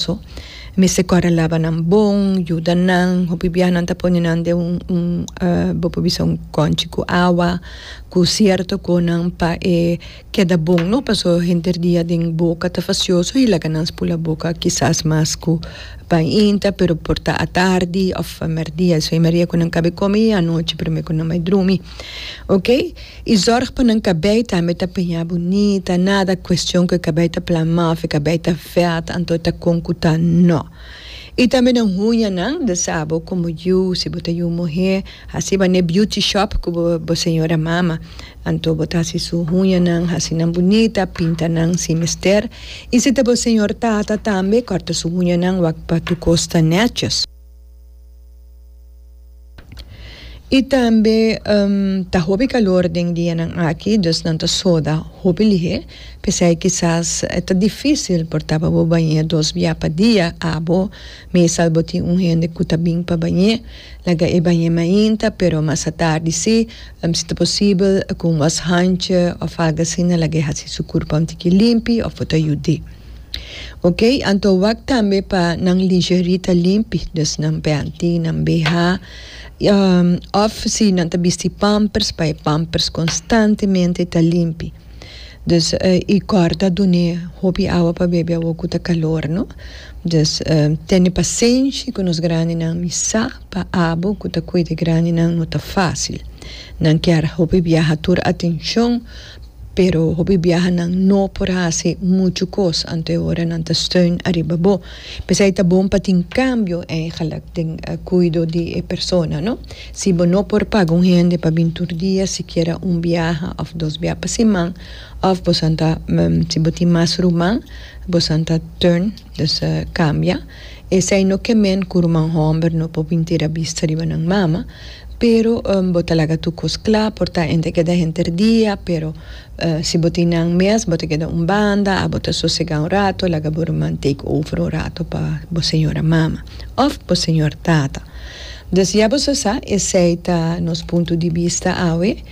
so mester kòrda laba nan bon yuda nan hopi biaha nan ta pone nan den un un bo por bisa un kònchi ku awa ku sierto konan pa e keda bon no paso henter dia den boka ta fasioso i laga nan spula boka kisas mas ku pahinta pero por ta atardi òf merdia esei mari e ku nan kabe kome i anochi promé ku nan bai drumi. Ok y zorg pa nan cabey tambe ta piña bunita nada cuestion cu e cabey ta plama of e cabey ta vet anto ta con cu ta no y tambe nan huñanan de sa bo como yu si bo ta yu muher haci bane beauty shop cu bo señora mama anto bo ta haci su huñanan haci nan bunita pinta nan si mester y si ta bo señor tata tambe corta su huñanan wak pa tu cos ta netjes. Y tambe ta hopi calor den dianan aki dus nan ta soda hopi lihe pesey kisas ta dificil por ta pa bo bañe dos bia pa dia abo meestal bo tin un hende cu ta bin pa bañe laga e bañe mainta pero mas atardi si si ta posibel cu un washandje of algo asina laga e hasi su curpon tiki limpi of bo ta yud'e. Ok, anto wak tambe pa nan lingerie ta limpi, dus nan peanti, nan BH, um, of si nan ta bisti pampers pa e pampers konstantemente ta limpi. Dus uh i kòr ta dun'é hopi awa pa bebe awo ku ta kalor, no? Dus um tene pasenshi ku nos grandinan mi sa pa abo ku ta kuida grandinan no ta fásil. Nan kier hopi biaha tur atenshon Pero hopi biahanan no por hasi muchu kos anto ora nan ta steun ariba bo. P'esei ta bon pa tin kambio eigenlik den kuido di e persona. Si bo no por paga un hende pa bin tur dia, sikiera un biaha òf dos biaha pa siman, òf bosan ta, si bo tin mas ruman, bosan ta turn. Nos a kambia. Esei no ke men ku ruman hòmber no por bin tira bista riba nan mama, pero bo ta laga tur kos kla por ta enta e keda henter dia, pero si bo tin nan mes bo ta keda un banda a bo ta sosegá un rato laga bo ruman take over un rato pa bo señora mama òf bo señor tata. Des ya bo sa sa esei ta nos punto di bista awe.